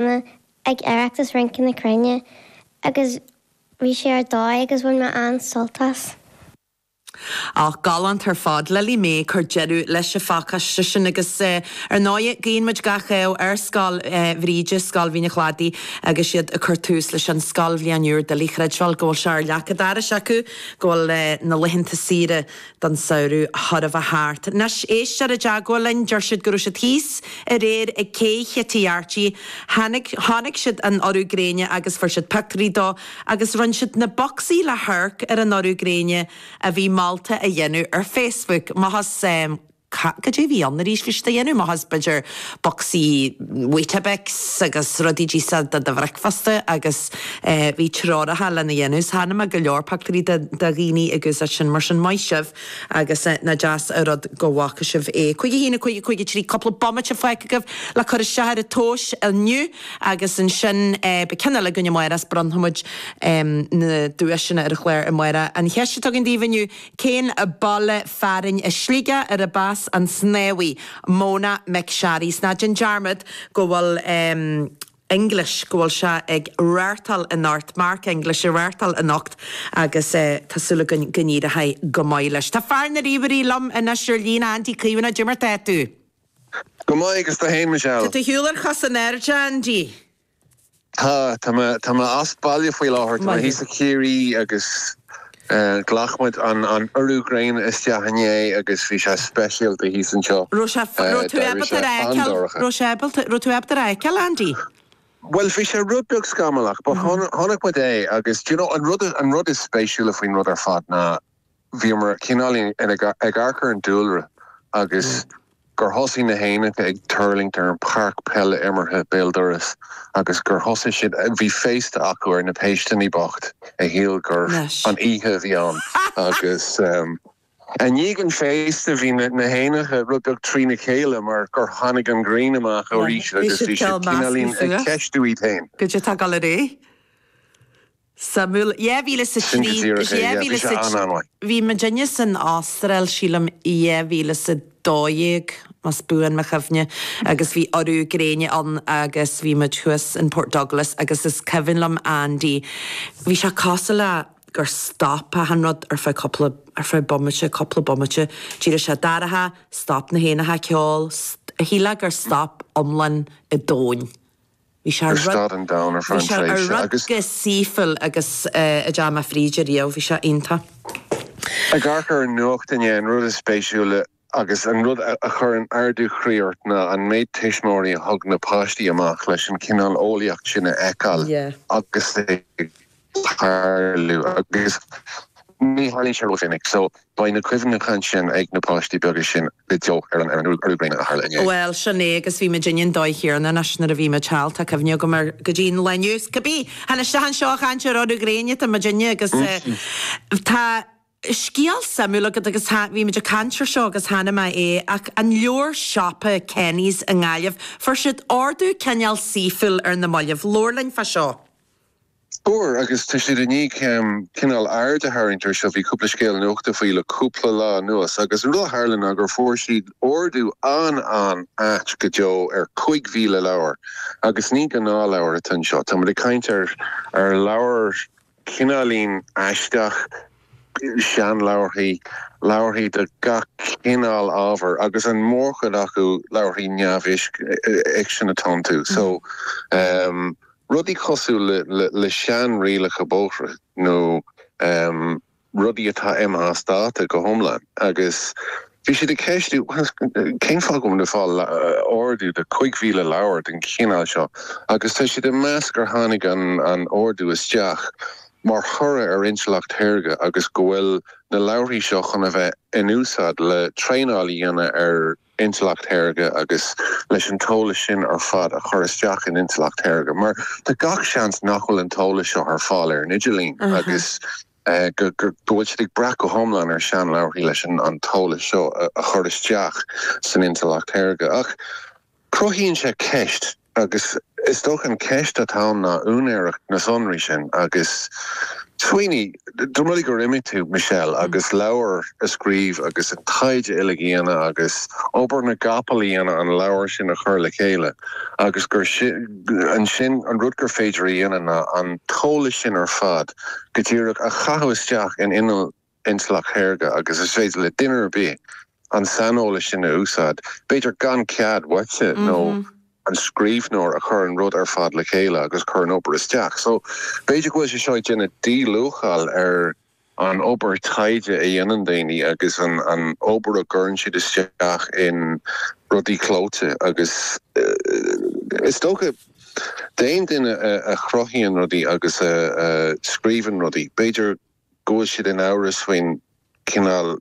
mé ag Oireachtas Rince na Cruinne agus bhí sé ar dóigh agus bhain mé an-sult as. Ach galánta ar fad, Lily May ag cur deireadh leis an phacáiste sin agus ar ndóigh guíonn muid gach rath ar Scoil Bhríde, Scoil Mhín an Chladaigh agus iad ag cur tús leis an scoilbhliain úr. Doiligh a chreidbheáil go bhfuil sé ar leac an dorais acu go bhfuil na laethanta saoire den tsamhradh thar a bheith thart. Anois, éisteoir i dteagmháil linn, deir siad go raibh siad thíos aréir ag cé Chití Arty, tháinig, chonaic siad an urú gréine agus fuair siad pioctúirí dó agus roinn siad na bocsaí le hamharc ar an urú gréine a bhí molta a dhéanamh ar Facebook. Má thuigim, eh. ca, cad é a bhí ann arís leis sin a dhéanamh, b'fhéidir bocsaí weetabix agus rudaí díofa do do bhricfeasta agus eh bhí treoracha lena dhéanamh so chonaic mé go leor pictiúirí de de dhaoine ag úsáid sin mar sin maith sibh agus eh nach deas a' rud go bhfaca sibh é. Cúig a haon a cúig a cúig a trí cúpla bomaite fágtha agaibh le cur isteach ar an tomhais inniu agus ansin eh beidh ceann eile againn amárach is bronnfaidh muid em na duaiseanna ar an chlár amárach. An cheist a thug muid daoibh inniu Cén baile fearainn i Sligeach arb as an snámhaí Mona McSharry? Is ná déan dearmad go bhfuil English, go bhfuil sé ag reathtáil anocht, Mark English ag reathtáil anocht agus tá súil againn go n-éireochaidh go maith leis. Tá fear na ríomhairí liom anois ar líne, Andy Caomhánach, cad é mar atá tú? Go maith agus tú féin, a Michelle? Tá tú ar shiúl ar chos an airde, Andy. Tá mé as baile faoi láthair. Tá mé thíos i Ciarraí agus ghlac muid an urú gréine isteach inné agus bhí sé speisialta thíos anseo. Raibh sé, raibh tú ábalta é a fheiceáil, raibh sé ábalta, raibh tú ábalta é a fheiceáil Andy? Bhuel bhí sé rud beag scamallach but chonaic muid é agus do you know an rud, an rud is spéisiúla faoin rud ar fad ná, bhí muid cineál ag amharc ar an dúlra agus gur thosaigh na héanacha ag tuirlingt ar an páirc peile imeartha béal dorais agus gur thosaigh siad, bhí féasta acu ar na péisteanna bocht a shíl gurbh an oíche a bhí ann agus i ndiaidh an féasta bhí na héanacha rud beag trína chéile mar gur tháinig an ghrian amach arís agus bhí siad cineál ag ceistiú iad féin. sa bhliain 2003, 2004. Bhí muid inne san Astráil, sílim 2012 más buan mo chuimhne, agus bhí urú gréine ann agus bhí muid thuas in Port Douglas agus is cuimhin liom Andy, bhí sé cosúil le gur stop achan rud ar feadh cúpla, ar feadh bomaite, cúpla bomaite, d'éirigh sé dorcha, stop na héanacha ag ceol, shílfeá gur stop iomlán an domhain. Bhí sé ar stad an domhain ar feadh an tréimhse agus. saoifiúil agus i dteach mo Bhríde riamh. Bhí sé iontach. Amharc ar an nuacht inné, an rud is spéisiúla agus an rud a chuireann ardú chroí ort ná an méid tuismitheoirí a thug na páistí amach leis an chineál eolaíocht sin a fheiceáil agus a. tarlú agus ní tharlaíonn sé ró-mhinic so beidh na cuimhneacha ansin ag na páistí beaga sin go deo ar an urú gréine a tharla inné. Bhuel, sin é agus bhí muid inár ndaoine óga cheana i Náisiún nuair a bhí muid thall, tá cuimhne agam air go dtí an lá inniu. Agus cibé, tháinig isteach anseo a chaint ar urú gréine, tá muid inne agus tá, Scéal suimiúil agat agus tá, bhí muid ag caint ar seo agus cheana féin ach an leabhar siopa Kenny's i nGaillimh? Fuair siad ordú cineál saoifiúil ar na mallaibh. Labhair linn fá seo. Fuair agus tá siad i ndiaidh cineál aird a tharraingt ar seo. Bhí cúpla scéal nuachta faoi le cúpla lá anuas agus an rud a tharla ná gur fuair siad ordú an-an-ait go deo ar 5,000 leabhar agus ní gnáthleabhar atá anseo. Tá muid ag caint ar leabhair. Cineáilín aisteach. Seanleabharthaí, leabharthaí de gach cineál ábhair agus an mhórchuid acu leabharthaí neamhfhicsin atá iontu. So, rudaí cosúil le seanrialacha bóithre nó rudaí atá imithe as dáta go hiomlán agus. Bhí siad ag ceistiú cén fáth go bhfuil ordú de chúig mhíle leabhar den chineál seo agus tá siad ag meas gur tháinig an t-ordú isteach mar thoradh ar intleacht shaorga agus go bhfuil na leabharthaí seo chun a bheith in úsáid le traenáil a dhéanamh ar intleacht shaorga agus leis an t-eolas sin ar fad a chur isteach in intleacht shaorga mar tá gach seans nach bhfuil an t-eolas seo ar fáil ar an idirlíon agus go bhfuil siad ag brath go hiomlán ar seanleabharthaí leis an t-eolas seo a chur isteach san intleacht shaorga. Ach cruthaíonn sé ceist, agus is dócha an cheist atá ann ná úinéireacht na sonraí sin agus smaoinigh dá mba rud é gur imigh tú, Michelle, agus leabhar a scríobh agus an taighde uilig a dhéanamh agus obair na gcapall a dhéanamh an leabhar sin a chur le chéile agus gur ansin an rud gur féidir a dhéanamh ná an t-eolas sin ar fad go díreach a chaitheamh isteach in inneall intleacht shaorga agus is féidir le duine ar bith an saineolas sin a úsáid, b'fhéidir gan cead uaitse nó an scríbhneoir a chuir an rud ar fad le chéile agus a chuir an obair isteach. So, b'fhéidir go bhfuil sé seo ag déanamh díluacháil ar an obair taighde a dhéanann daoine agus an obair a gcuireann siad isteach in rudaí clóite agus is dócha, D'aon duine a chruthaíonn rudaí agus a scríobhann rudaí, b'fhéidir go bhfuil siad in amhras faoin chineál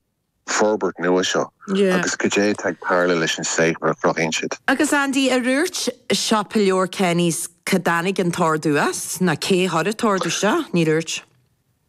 forbairt nua seo agus cad é atá ag tarlú leis an saothar a chruthaíonn siad. Agus Andy, ar dhúirt siopa leabhar Kenny's, cá dtáinig an t-ordú as? Nó cé chuir an t-ordú seo? Níor dhúirt.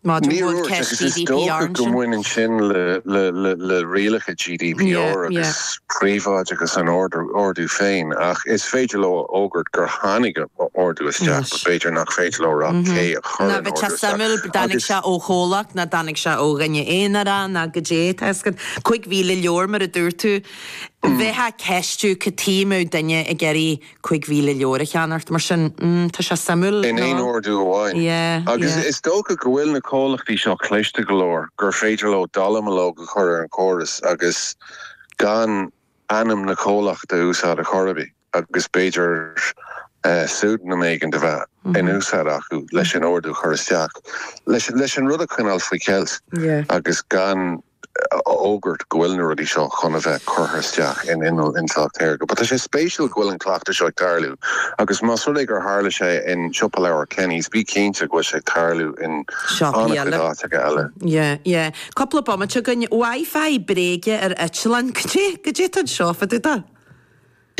Níor dhúirt agus is dócha go mbaineann sin le rialacha GDPR agus príobháideachas an ordú féin ach is féidir leo a fhógairt gur tháinig ordú isteach but b'fhéidir nach féidir leo a rá cé a chuir an ordú isteach. Nó bheadh sé suimiúil, dtáinig sé ó chomhlacht nó dtáinig sé ó dhuine aonair nó cad é an scéal. Cúig mhíle leabhar mar a dúirt tú. Bheifeá ag ceistiú cad chuige a mbeadh duine ag iarraidh Cuig mhíle leabhar a cheannacht mar sin. Mmm, tá sé suimiúil, in aon ordú amháin. Yeah, yeah. Agus is dócha go bhfuil na comhlachtaí seo cliste go leor gur féidir leo dallamullóg a chur ar an chóras agus gan ainm na comhlachta a úsáid a chor ar bith agus b'fhéidir pseudonym éigin a bheith in úsáid acu leis an ordú a chur isteach, leis an rud a choinneáil faoi cheilt agus gan a. a fhógairt go bhfuil na rudaí seo chun a bheith curtha isteach in inneall intleacht shaorga. But tá sé spéisiúil go bhfuil an cleachtadh seo ag tarlú agus más rud é gur tharla sé in siopa leabhar Kenny's, bí cinnte go bhfuil sé ag tarlú in an-chuid áiteacha eile. Yeah, yeah. Cúpla bomaite againn. Wi-Fi bréige ar eitleán. Cad é? Cad é atá seo fá dtaobh de?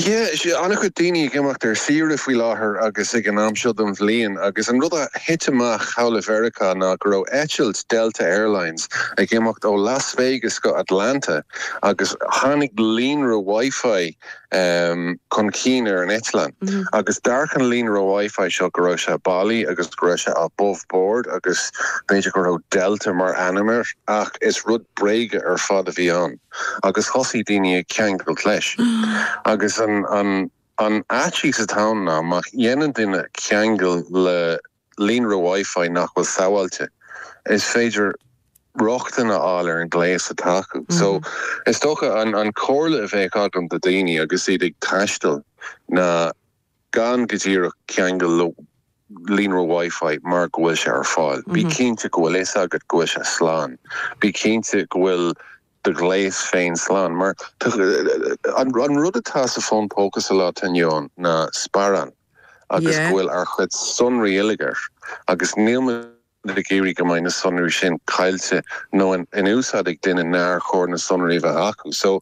Tá an-chuid daoine ag imeacht ar saoire faoi láthair agus ag an am seo den bhliain agus an rud a thit amach thall i Mheiriceá ná go raibh eitilt Delta Airlines ag imeacht ó Las Vegas go Atlanta agus tháinig líonra Wi-Fi chun cinn ar an eitleán agus d'amharc an líonra Wi-Fi seo go raibh sé bailí agus go raibh sé above board agus b'fhéidir go raibh Delta mar ainm air ach is rud bréige ar fad a bhí ann. agus thosaigh daoine ag ceangailt leis. Agus an faitíos atá ann ná má dhéanann duine ceangal le líonra Wi-Fi nach bhfuil sábháilte, is féidir rochtain a fháil ar an ghléas atá acu. So is dócha an comhairle a bheadh agam do daoine agus iad ag taisteal ná, Gan go díreach ceangal le líonra Wi-Fi mar go bhfuil sé ar fáil, bí cinnte go bhfuil fhios agat go bhfuil sé slán. Bí cinnte go bhfuil do ghléas féin slán mar an rud atá sa fón póca sa lá atá inniu ann ná sparán agus go bhfuil ár chuid sonraí uilig air agus níl muid ag iarraidh go mbeidh na sonraí sin caillte nó in úsáid ag duine nár chóir na sonraí a bheith acu so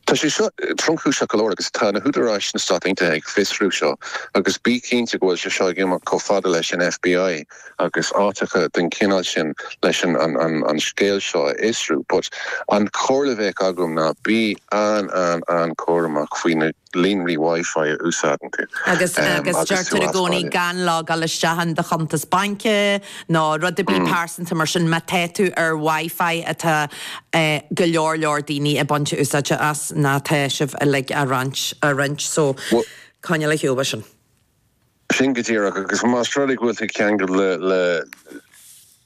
Tá sé seo tromchúiseach go leor agus tá na húdaráis na Stát Aontaithe ag fiosrú seo agus bí cinnte go bhfuil sé seo ag imeacht chomh fada leis an FBI agus áiteacha den chineál sin leis an scéal seo a fhiosrú, but an chomhairle a bheadh agam ná bí an-an-chúramach faoi na líonraí Wi-Fi a úsáideann tú agus tú as baile. Agus agus deirtear i gcónaí gan logáil isteach in do chuntas baince nó rud ar bith pearsanta mar sin má tá tú ar Wi-Fi atá go leor leor daoine ag baint úsáide as ná tá sibh uilig á roinnt á roinnt so Bhuel. coinneáil ar shiúl as sin. sin go díreach agus más rud é go bhfuil tú ag ceangal le le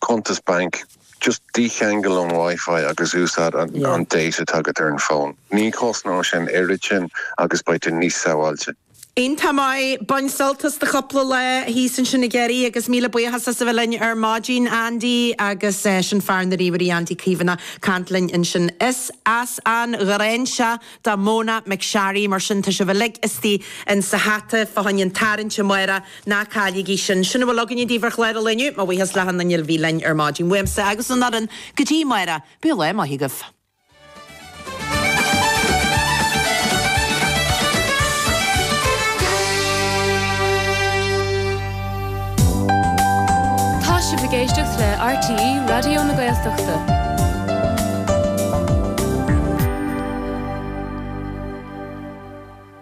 cuntas bainc just dícheangail ón WiFi agus úsáid an an data atá agat ar an bhfón. Ní chosnaíonn sé an oiread sin agus beidh tú níos sabháilte. Iontach maith, bain sult as do chúpla lá thíos ansin i gCiarraí agus míle buíochas as a bheith linn ar maidin Andy agus é sin fear na ríomhairí Andy Caomhánach ag caint linn ansin. Is as an Ghráinseach do Mona McSharry mar sin, tá sibh uilig istigh insa hata fá choinne an tarraingt amárach, ná cailligí sin. Sin a bhfuil againne daoibh ar chlár an lae inniu, mo bhuíochas le hachan nduine a bhí linn ar maidin. Uaimse agus an fhoireann go dtí amárach, bíodh lá maith agaibh. Tá sibh ag éisteacht le RTÉ Raidió na Gaeltachta.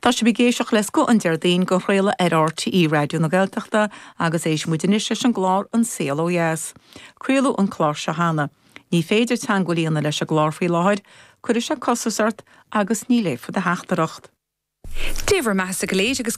Tá sibh ag éisteacht le Scoth an Déardaoin, dhá chraoladh ar RTÉ Raidió na Gaeltachta agus éistfidh muid anois leis an gclár An Saol Ó Dheas. Craoladh an clár seo cheana. Ní féidir teangmháil a dhéanamh leis an gclár faoi láthair, cuirfidh sé costas ort agus ní léifear do theachtaireacht. Dé bhur mbeathasa go léir agus.